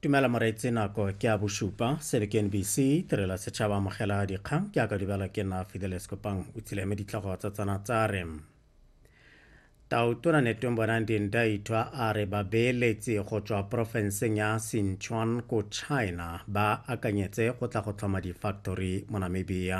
tumela moreetsi nako ke a bosupa sebe ke nbc tirela setšhaba amogela dikgang ke aka dibela ke nna fideles kopang o tsile me ditlhogo tsa tsana tsa re tautona netong bonang dindaithwa a re babeeletsi go tswa porofenseng ya sinchuan ko china ba akanyetse go tla go tlhoma difactory mo namibia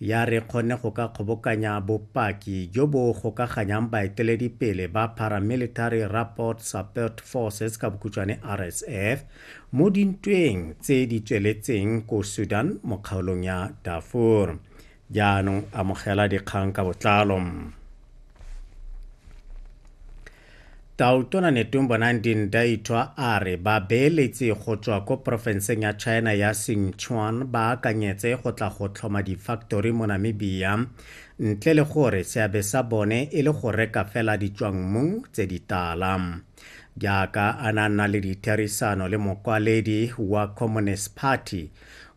ya re kgone go ka kgobokanya bopaki jo bo gokaganyang baeteledipele ba Paramilitary Rapport Support Forces ka bokhutshwane RSF mo dintweng tse di tsweletseng ko Sudan mo kgaolong ya Darfur. Jaanong amogela dikgang ka botlalo. Tautona Netumbo Nandi-Ndaitwah a re babeeletsi go tswa ko porofenseng ya China ya Sichuan ba akanyetse go tla go tlhoma difaktori mo Namibia ntle le gore seabe sa bone e le go reka fela ditswangmmu tse di tala. Jaaka a na nna le ditherisano le mokwaledi wa Communist Party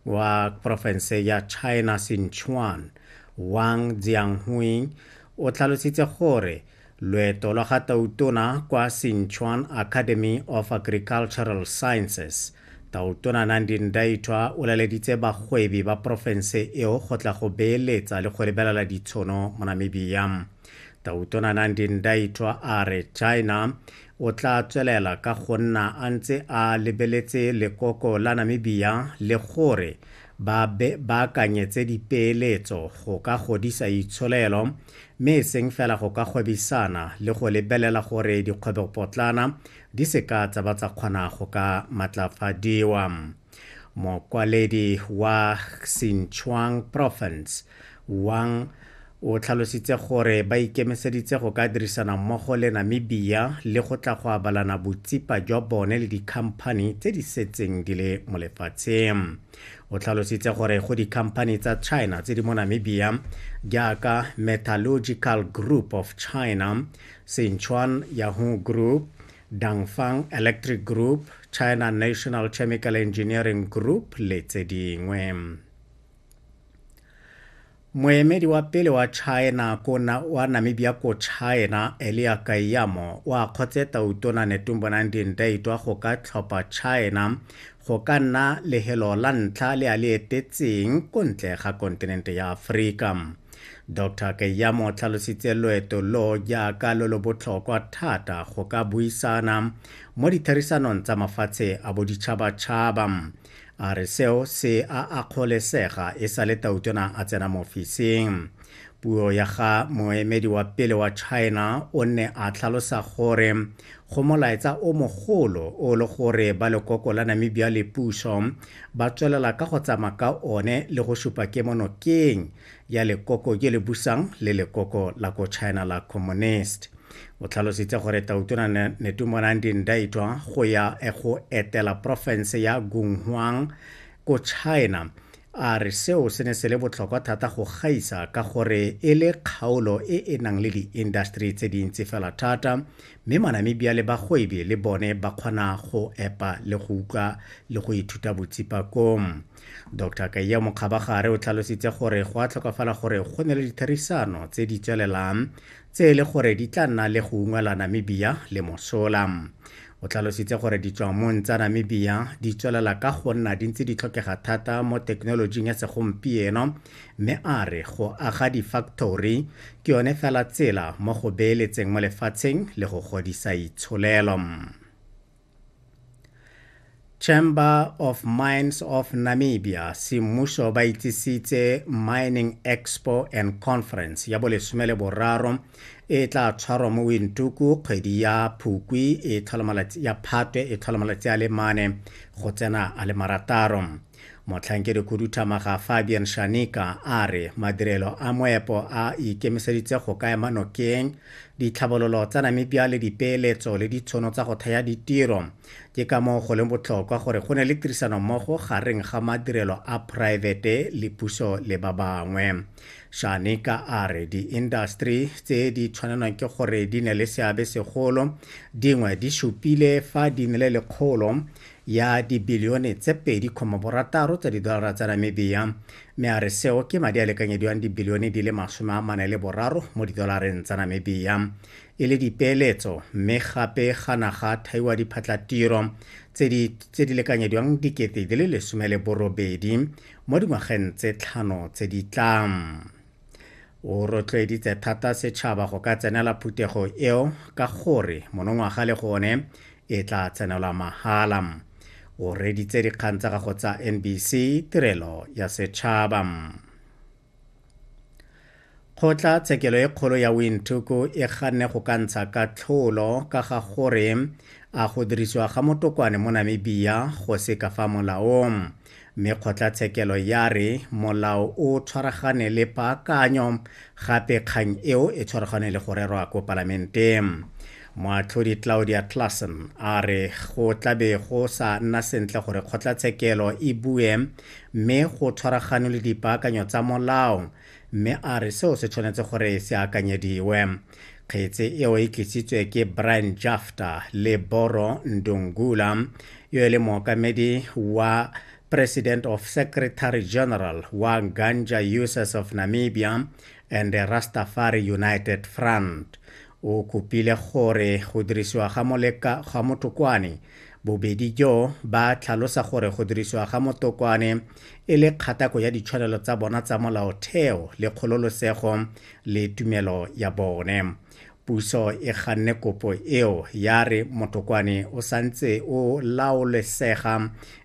wa porofense ya China Sichuan, Wang Jianghui, o tlhalositse gore Loeto lwa ga Tautona kwa Sinchuan Academy of Agricultural Sciences, Tautona Nandi Ndaitwah o laleditse bagwebi ba porofense eo go tla go beeletsa le go lebelela ditshono mo Namibia. Tautona Nandi Ndaitwah a re China o tla tswelela ka go nna a ntse a lebeletse lekoko la Namibia le gore ba baakanyetse dipeeletso go ka godisa itsholelo mme e seng fela go ka gwebisana le go lebelela gore dikgwebopotlana di seka tsa ba tsa kgona go ka matlafadiwa mokwaledi wa xinchuang province wang o tlhalositse gore ba ikemiseditse go ka dirisana mmogo le namibia le go tla go abalana botsipa jwa bone le dikhamphani tse di setseng di le mo lefatsheng o tlhalositse gore go dikhamphani tsa china tse di mo namibia jaaka metallurgical group of china sinchuan yahoo group dangfang electric group china national chemical engineering group le tse dingwe Moemedi wa pele wa China ko na, wa Namibia ko China, Elia Kaiyamo, o a kgotse Tautona Netumbonang Dindaitwa go ka tlhopha China go ka nna lehelo la ntlha le a le etetseng ko ntle ga kontinente ya Aforika. Dr Kaiyamo o tlhalositse loeto lo jaaka lo lo botlhokwa thata go ka buisana mo ditherisanong tsa mafatshe a boditšhabatšhaba. a re seo se a akgolesega e sa le tautona a tsena mo ofising puo ya ga moemedi wa pele wa china o ne a tlhalosa gore go molaetsa o mogolo o le gore ba lekoko la namibia le puso ba tswelela ka go tsamaya ka one le go supa kemonokeng ya lekoko je le busang le lekoko la ko China la Communist. O tlhalositse gore Tautona Netumona Ndindaitwa go ya e go etela porofense ya Gunghuang ko China a re seo se ne se le botlhokwa thata go gaisa ka gore e le kgaolo e e nang le diindaseteri tse dintsi fela thata mme manamibia le bagwebi le bone ba kgona go epa le go utlwa le go ithuta botsipakong dr kaiya mokgabagare o tlhalositse gore go a tlhokafala gore go ne le ditherisano tse di tswelelang tse e le gore di tla nna le go ungwela namibia le mosola o tlhalositse gore ditswamong tsa namibia di tswelela ka go nna di ntse di tlhokega thata mo thekenolojing ya segompieno mme a re go aga di-factory ke yone fela tsela mo go beeletseng mo lefatsheng le go godisa itsholelo chamber of mines of namibia semmuso ba itsisitse mining expo and conference ya bolesome le boraro e tla tshwarwa mo wintuku kgwedi ya phukwi e ya phatwe e tlhola malatsi a le mane go tsena a le marataro Motlhankedikhuduthamaga Fabian Shanika a re madirelo a moepo a ikemiseditse go ka ema nokeng ditlhabololo tsa Namibia le dipeeletso le ditshono tsa go thaya ditiro. Ke ka moo go leng botlhokwa gore go ne le tirisano mmogo gareng ga madirelo a poraefete le puso le ba bangwe. Shanika a re diindaseteri tse di tshwanelwang ke gore di ne le seabe segolo dingwe di supile fa di nile le kgolo ya dibilione tse 2,6 tsa didolara tsa Namibia, mme a re seo ke madi a lekanyediwang dibilione di le masome a mane le boraro mo didolareng tsa Namibia e le dipeeletso mme gape ga naga thaiwa diphatlatiro tse di lekanyediwang dikete di le lesome le borobedi mo dingwageng tse tlhano tse di tlang o rotloeditse thata setšhaba go ka tsenela phuthego eo ka gore monongwaga le gone e tla tsenelwa mahala o reditse dikgang tsa gago tsa nbc tirelo ya setšhaba kgotla tshekelo e kgolo ya wintuku e ganne go ka ntsha ka tlholo ka ga gore a go dirisiwa ga motokwane mo namibia go se ka fa molaong mme kgotlatshekelo ya re molao o tshwaragane le paakanyo gape kgang eo e tshwaragane le go rerwa ko palamenteng moatlhodi claudia classen a re go tlabe go sa nna sentle gore kgotlatshekelo e bue mme go tshwaraganwe le dipaakanyo tsa molao Mme a re seo se tshwanetse gore se akanyediwe. Kgetse eo e tlisitswe ke Brian Jafta le Boro Ndungula, yo e le mookamedi wa President of Secretary General wa Ganja Users of Namibia and the Rastafari United Front. O kopile gore go dirisiwa ga moleka ga motokwane bobedi jo ba tlhalosa gore go dirisiwa ga motokwane e le kgatako ya ditshwanelo tsa bona tsa molaotheo le kgololosego le tumelo ya bone puso e ganne kopo eo ya re motokwane o santse o laolesega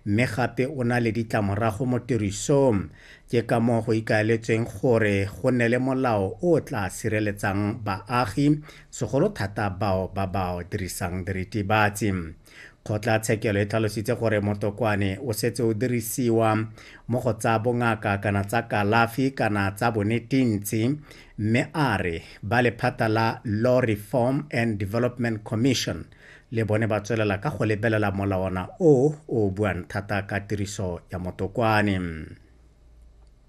mme gape o na le ditlamorago mo tirisong ke ka moo go ikaeletsweng gore go nne le molao o tla sireletsang baagi segolo thata bao ba ba dirisang diritibatsi Kgotlatshekelo e tlhalositse gore motokwane o setse o dirisiwa mo go tsa bongaka kana tsa kalafi kana tsa bonetintsi mme a re ba lephata la Law Reform and Development Commission le bone ba tswelela ka go lebelela molawana o o buang thata ka tiriso ya motokwane.